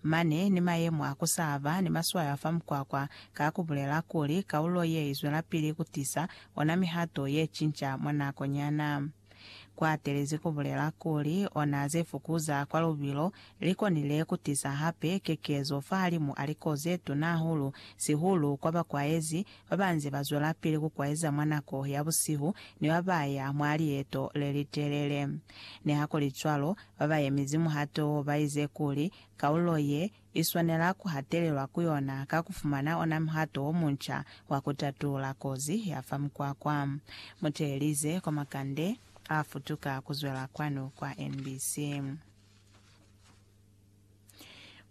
Mane ni mayemo a ku sa ba ni maswayo a fa mukwakwa ka ku bulela kuli kaulo ye i zwelapili ku tisa ona mihato ye cinca mwa nako nyana. Ku atelezi ku bulela kuli ona ze fukuza kwa lubilo li konile ku tisa hape kekezo fahalimu a liko ze tuna hahulu, sihulu kwa bakwaezi ba ba nze ba zwelapili ku kwaeza mwa nako ya busihu ni ba ba ya mwa lieto le li telele. Nihakulicwalo, Babayemizi muhato wo baize kuli kaulo ye iswanela kuhatelelwa ku yona ka kufumana ona muhato womunca wa kutatulula kozi ya fa mukwakwa. Muteelize kwa makande afutuka kuzwela kwanu kwa NBC.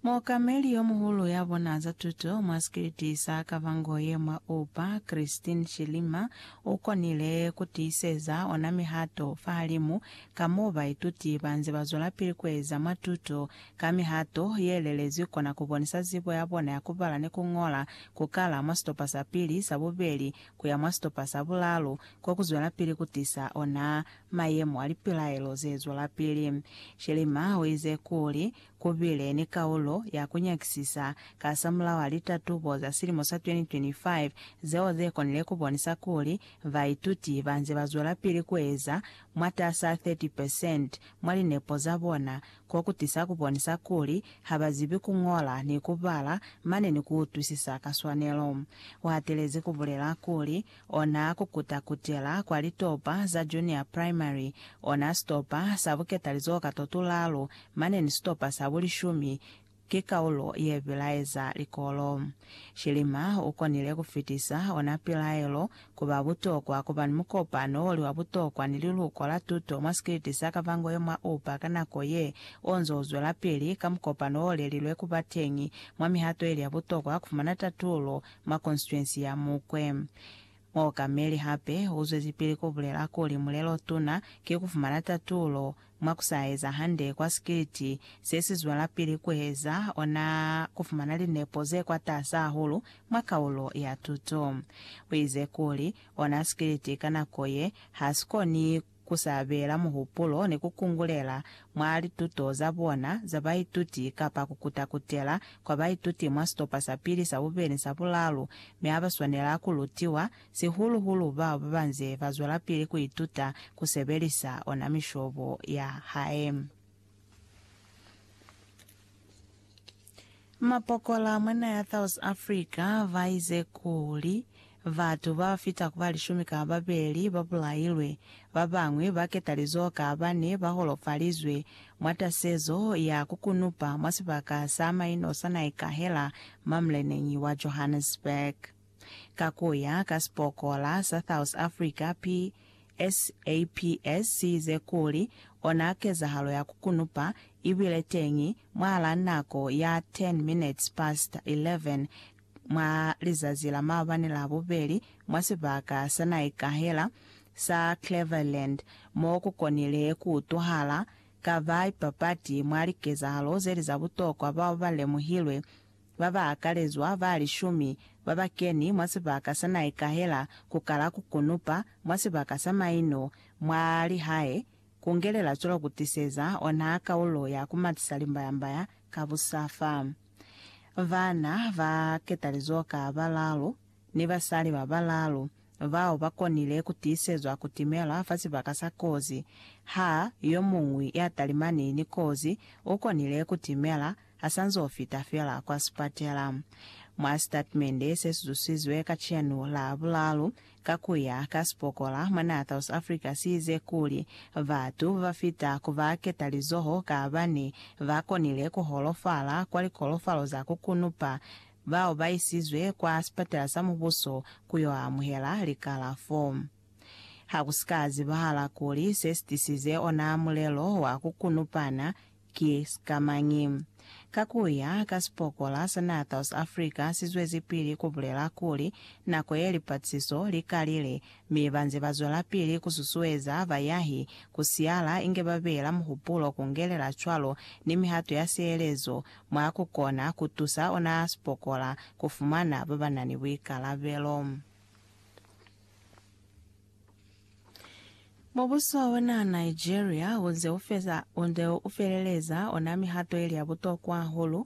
Muokameli yo muhulu ya bona za tuto mwa sikiliti sa Kavangoye mwa Oupa, Christine Chilima, u konile ku tiiseza ona mihato fahalimu ka m'o baituti ba nze ba zwelapili ku eza mwa tuto. Ka mihato ye lelezwi kona ku bonisa zibo ya bona ya ku bala ni ku ñola, ku kala mwa sitopa sa pili, sa bubeli, ku ya mwa sitopa sa bulalu, ko ku zwelapili ku tisa ona Mayemo a lipilaelo ze zwelapili. Schirmer u ize kuli, Ku bile ni kaulo ya ku nyakisisa kasamulaho a litatubo za silimo sa 2025 zeo ze konile ku bonisa kuli baituti ba nze ba zwelapili ku eza mwatas'a 30 percent mwa linepo za bona, ko ku tisa ku bonisa kuli ha ba zibi ku ñola ni ku bala mane ni ku utwisisa ka swanelo. U hatelezi ku bulela kuli, Ona kukuta kutela kwa litopa za Junior Primary, ona sitopa sa buketalizoho ka to tulalu, mane ni sitopa sa bulishumi, ki kaulo ye bilaeza likolo. Shilima u konile ku fitisa ona pilaelo ku ba butokwa ku ba ni mukopano o li wa butokwa ni liluko la tuto mwa sikiliti sa Kavango ye mwa Oupa ka nako ye o nzo u zwelapili ka mukopano o lelilwe ku ba teñi mwa mihato ili ya butokwa ku fumana tatulo mwa konstituensi ya Mukwe. Muokameli hape u zwezipili ku bulela kuli mulelo-tuna ki ku fumana tatulo mwa ku sa eza hande kwa sikiliti se si zwelapili ku eza ona ku fumana linepo ze kwatasi hahulu mwa kaulo ya tuto. U ize kuli ona sikiliti ka nako ye ha si koni ku sabela muhupulo ni ku kungulela mwa lituto za bona za baituti kapa ku kuta-kutela kwa baituti mwa sitopa sa pili, sa bubeli ni sa bulalu, mi ha ba swanela ku lutiwa, sihulu-hulu bao ba ba nze ba zwelapili ku ituta ku sebelisa ona mishobo ya hae. Mapokola mwa naha ya South Africa baize kuli, Batu babafita kuba lishumi ka babeli babulailwe, babañwi baketalizoho ka bane baholofalizwe mwa tasezo ya kukunupa mwa sibaka sa maino sa Naikahela mwa muleneñi wa Johannesburg. Ka ku ya ka sipokola sa South Africa PSAPS si ize kuli, Ona kezahalo ya ku kunupa i bile teñi mwahal'a nako ya 10 minutes past 11 mwa lizazi la maabani la bubeli mwa sibaka sa naikahela sa Cleveland mo ku konile ku utwahala ka ba ipapati mwa likezahalo ze li za butokwa bao ba lemuhilwe Ba ba akalezwa ba lishumi ba ba keni mwa sibaka sa Naikahela ku kala ku kunupa mwa sibaka sa maino mwa lihae ku ngelela cwalo ku tiseza ona kaulo ya ku matisa limbayambaya ka busafa. Bana ba ketalizo ka balalu ni basali ba balalu bao ba konile ku tiisezwa ku timela fa sibaka sa kozi. Ha yo muñwi ya talimani ni kozi u konile ku timela asanz'o fita fela kwa sipatela. Mwa sitatimende se sizusizwe kacenu la bulalu, ka kuya ka sipokola mwanaa South Africa siize kuli, batu babafita ku ba ketalizoho ka bane ba konile ku holofala kwa likolofalo za ku kunupa, bao ba isizwe kwa sipatela sa mubuso ku yo amuhela likalafo. Ha ku si ka zibahala kuli se si tisize ona mulelo wa ku kunupana, Ki sikamañi? Ka kuya ka sipokola sa naha South Africa sizwezipili kubulela kuli, nako ye lipatisiso likalile, mi banze bazwelapili kususueza bayahi kusiala inge babeela muhupulo kungelela cwalo ni mihato ya sielezo mwa kukona kutusa ona sipokola kufumana babanani buikalabelo. Mubuso ona Nigeria unze ufeza unde ufeleleza ona mihato ili ya butokwa hahulu